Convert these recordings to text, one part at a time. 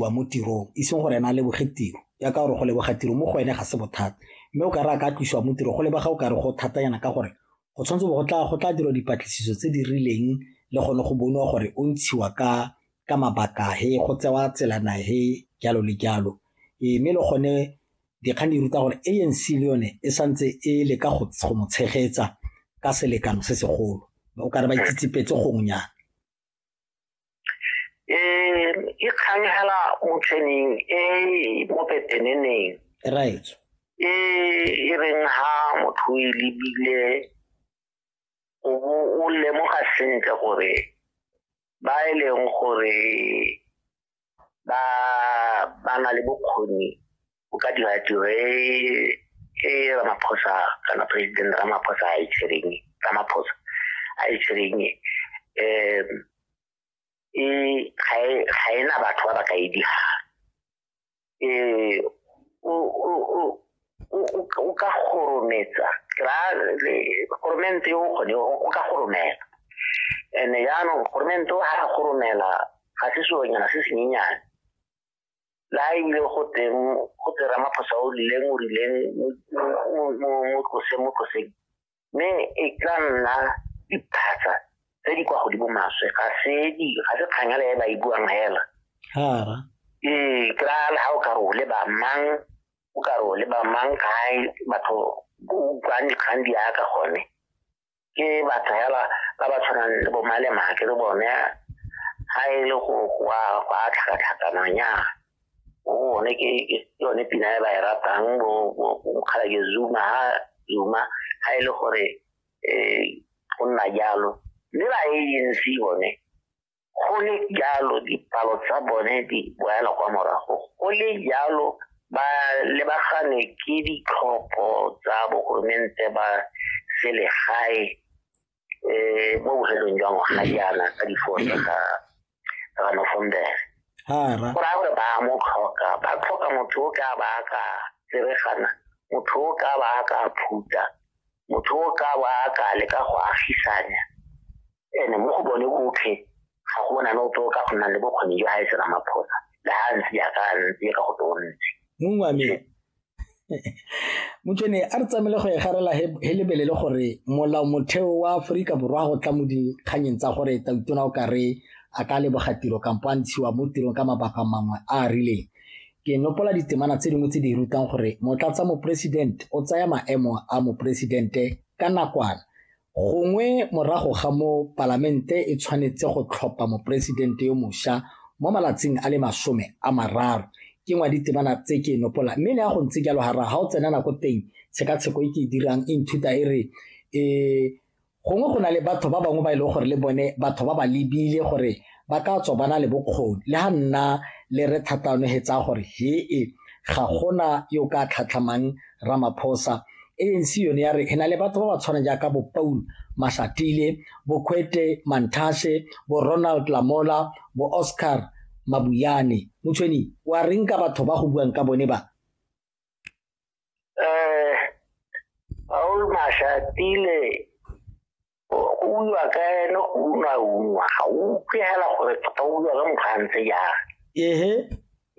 wa mo tirong e seng gore ena a leboge tiro ya ka gore go leboga tiro mo go ene ga se bothata mme o ka re a ka tlosiwa mo tiro go lebega o ka re go thatanyana ka gore go tshwanetse go tla go tla dirwa dipatlisiso tse di rileng le gone go bonwa gore o ntshiwa ka ka mabaka he go tsewa tselana he jalo le jalo ee mme le gone dikgang di ruta gore anc le yone e santse e le ka go mo tshegetsa ka selekano se segolo o ka re ba itsitsipetse gongnyana um e kgang fela motlheneng e mo peteneneng right e e reng ha motho e lebile o bo o lemoga sentle gore ba e leng gore ba ba na le bokgoni o ka dira tiro e e ramaphosa kana president ramaphosa a itshwereng e ramaphosa a itshwereng e um e ga e na batho ba ba ka e dira um o ka gorometsa goromente o kgone o ka goromela and jaanong goromente o ga goromela ga se seonyana se senyenyane la ile go teng go tera maphosa o rileng o rileng mo tloseng mo tloseng mme e tla nna diphatsa tse di kwa godimo maswe ga se di ga se kganyale e ba e buang hela hara ee ke ra le ga o ka re o le ba mang o ka re o le ba mang kae batho o utlwang dikgang di yaka gone ke batho hela ba ba tshwanang le bomalemake le bone ga e le go a tlhakatlhakanang ya o ne ke yone pina e ba e ratang mokgalake zuma ha zuma ha e le gore um go nna jalo le ba anc bone go le jalo dipalo tsa bone di boela kwa morago go le jalo ba lebagane ke ditlhopho tsa bogoromente ba selegae eh mo bofelong jwa ngwaga jaana ka difosa tsa ga ga nofombere ha ra go raya gore ba mo tlhoka ba tlhoka motho o ka ba ka tseregana motho o ka ba ka phuta motho o ka ba ka leka go agisanya ene mo go bone botlhe ga go bona no to ka go nna le bokgoni jwa ha e tsena maphosa le ha ntse ya ka ntse ka go tontse mongwe wa me motšhene a re tsamaile go e garela he lebele le gore molao motheo wa aforika borwa go tla mo dikganyeng tsa gore tautona o kare a ka leboga tiro kampo a ntshiwa mo tirong ka mabaka mangwe a a rileng ke nopola ditemana tse dingwe tse di rutang gore motlatsa moporesidente o tsaya maemo a moporesidente ka nakwana Gongwe morago ga moo Palamente e tshwanetse go tlhopha Moporesidente yo mosha mo malatsing a le masome a mararo. Ke ngwa ditebana tse ke e nopola mme le ya go ntse jalo gara ga o tsena nako teng tshekatsheko e ke e dirang e nthuta e re um gongwe go na le batho ba bangwe ba e leng gore le bone batho ba ba lebile gore ba ka tswa ba na le bokgoni le ga nna le re thatanogetsa gore hee ga gona yo ka tlhatlhamang ramaphosa anc yone ya re e na le batho ba ba tshwana jaaka bo paul mashatile bo kwete mantashe bo ronald lamola bo oscar mabuyane motshweni wa reng ka batho ba go buang ka bone ba um paul mashatile utlwa ka ene o utlwa utlwa ga o utlwe hela gore tota o utlwa ka motho a ntse jang ehe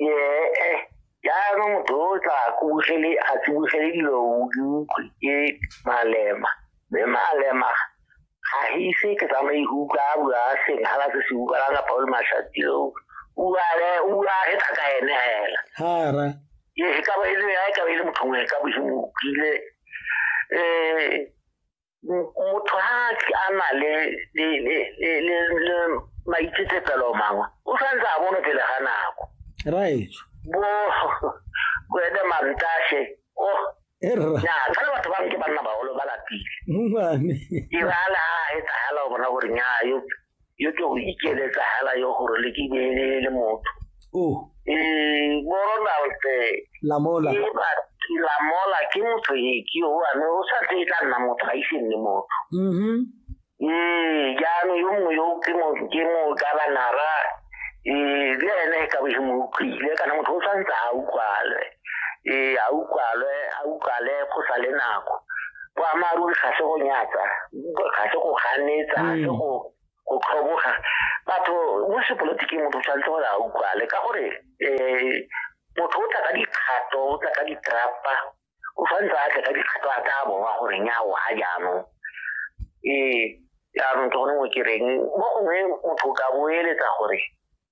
ee jaanong motho o tla kubugele a tsibogele dilo utlwe ke malema mme malema ga ise ke tsamaye go utlwa a bua a seng ga la se se utlwa la kapa o le mashatilo uale utlwa ge tla ka ene hela hara ee ka ba e le ya ka ba e le motho ngwe ka boshimo utlwile um motho ha a na le le le le le maitsetsepelo mangwe o santse a bone pele ga nako right bo go ene mantashe o oh. ya ka le batho ba nke banna bagolo ba lapile irala a e tsagala o bona gore nya yo yo ke go ikeletsa hela yo gore le ke be le motho oh eh boronald lamola e ba ke lamola ke motho e ke o ane o sa tse tla nna motho a ise nne motho mhm eh jaanong yo mongwe yo ke mo ke mo ka ba nara eh le ene ka bo mo utlwile kana motho o sa ntse a utlwale ee a utlwalwe a utlwale go sa le nako boammaaruri ga se go nyatsa ga se go ganetsa ga se mm. go go tlhoboga batho mo sepolotiking motho tshwanetse gore a utlwale ka gore um motho o tla ka dikgato o tla ka ditrapa o tshwanetse a tle ka dikgato a tla bowa gore nyawo ga jaanong ee jaanong ke gone mo ke reng mo gongwe motho o ka boeletsa gore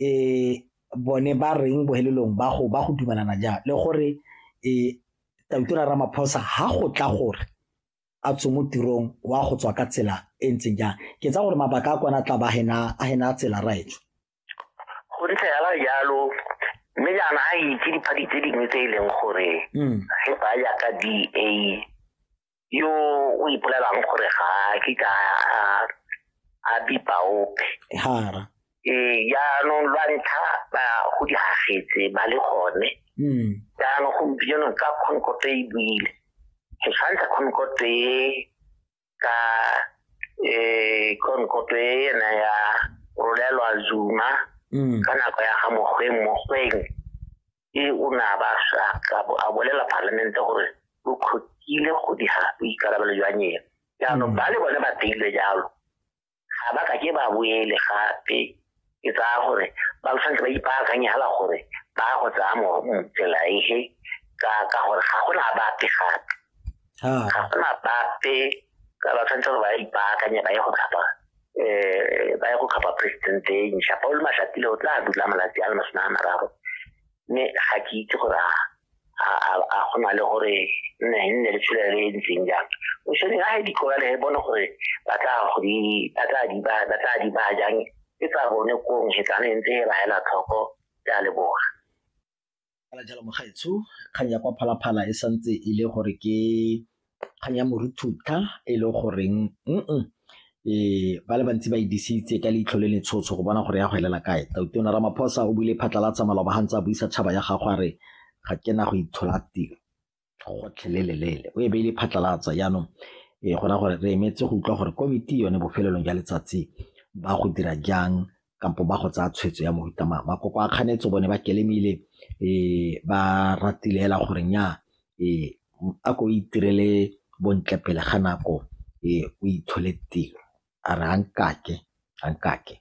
um bone ba reng bohelelong ba go ba go dumelana jang le gore um tautura ramaphosa ha go tla gore a tswe mo tirong wa go tswa ka tsela e ntseng jang ke tsa gore mabaka a kwana tla ba a hena tsela raetsho go ntse yala jalo mme jaana a itse dipadi tse dingwe tse e leng gore mm. ge ba ya ka da yo o ipolelang gore ga a ke ka a bipa ope hara ee jaanong lwa ntlha ba go di gagetse ba le gone hmm. jaanong gompieno ka concote e buile ke tshwantsha concote e ka um concote e ena ya rolelwa zuma hmm. ka nako ya ga mokgweng mokgweng e o ne a ba a bolela palamente gore lo kgotile go dira boikarabelo jwa nyena jaanong mm. ba le bone ba teile jalo ga ba ka ke ba boele gape ke tsaya gore ba tshwanetse ba ipaakanye fela gore ba go tsaya motsela ehe ka ka gore ga go na bape gape ga go na bape ka ba tshwanetse gore ba ipaakanye ba ye go tlhapa eh ba ya go kgapa president e ntšha paul mashatile o tla dula malatsi a le masome a mararo mme ga ke itse gore a go na le gore nne nne le tshola le e ntseng jang o tshwaneng a di kola le bone gore ba tla go di ba tla di ba ba tla di ba jang e tsa bone kong e tsa ne ntse e ba hela tlhoko ya leboga Fela jalo mogaetsho kgang ya kwa phalaphala e santse e le gore ke kgang ya moruthutha e le goreng mm ee ba le bantsi ba e disitse ka leitlho le letshotsho go bona gore ya go elela kae tautona ramaphosa o buile phatlalatsa maloba ga ntse a buisa tšhaba ya gago a re ga ke na go itshola tiro gotlhelelele o e beile phatlalatsa jaanong e gona gore re emetse go utlwa gore komiti yone bofelelong jwa letsatsi ba go dira jang kampo ba go tsaya tshwetso ya mohuta mang makoko a kganetso bone ba kelemile um ba ratile fela gore nya um a ko itirele bontle pele ga nako um o ithole tiro a re a nkake a nkake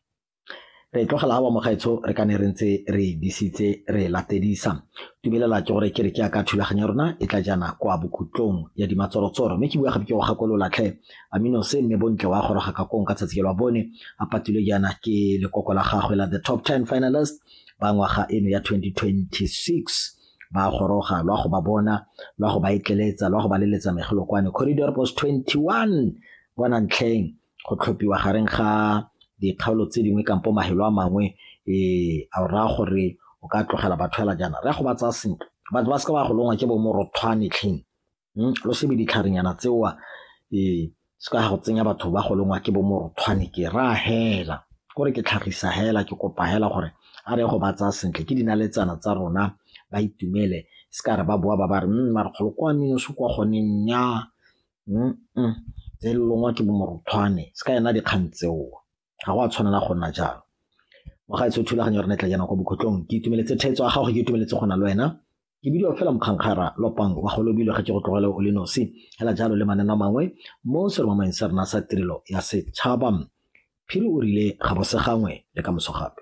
re e tlogela awa mogaetsho re ka ne re ntse re e disitse re e latedisa dumelela ke gore kereke ya ka thulaganyo ya rona e tla jana kwa bokhutlong ya dimatsorotsoro mme ke bua gape ke go gakololatlhe amino se mme bontle wa goroga ka kong ka tsatsi la bone a patile jaana ke lekoko la gagwe la the top 10 finalist ba ngwaga eno ya 2026 ba goroga lwa go ba bona lwa go ba etleletsa lwa go ba leletsa megelo kwane corridor post 21 bona ntlheng go tlhophiwa gareng ga dikgaolo tse dingwe kampo mahelo a mangwe um a raya gore o ka tlogela batho fela jaana raya go ba tsaya sentle batho ba seka ba go longwa ke bomorothwanetlheng hmm, lo shebe ditlharenyana tseoa um se ka go tsenya batho ba go longwa ke bomorothwane ke ra hela kore ke tlhagisa hela ke kopa hela gore a re go ba tsaya sentle ke dinaletsana tsa rona ba itumele se ka re ba boa ba ba re mm, marekgolo kwa minoso kwa gone nya tse di longwa ke bo moruthwane se ka yona dikgang tseo ga go a tshwanela go nna jalo wa gaetsho thulaganyo re ne tla jana kwa bokhutlong ke itumeletse thetso ya gago ke itumeletse go na le wena ke bidio fela mokgankgara lopang wa go lobile ga ke go tlogele o le nosi fela jalo le maneno a mangwe mo seromameng sa rena sa tirelo ya setšhaba phiri o rile ga bose gangwe le ka moso gape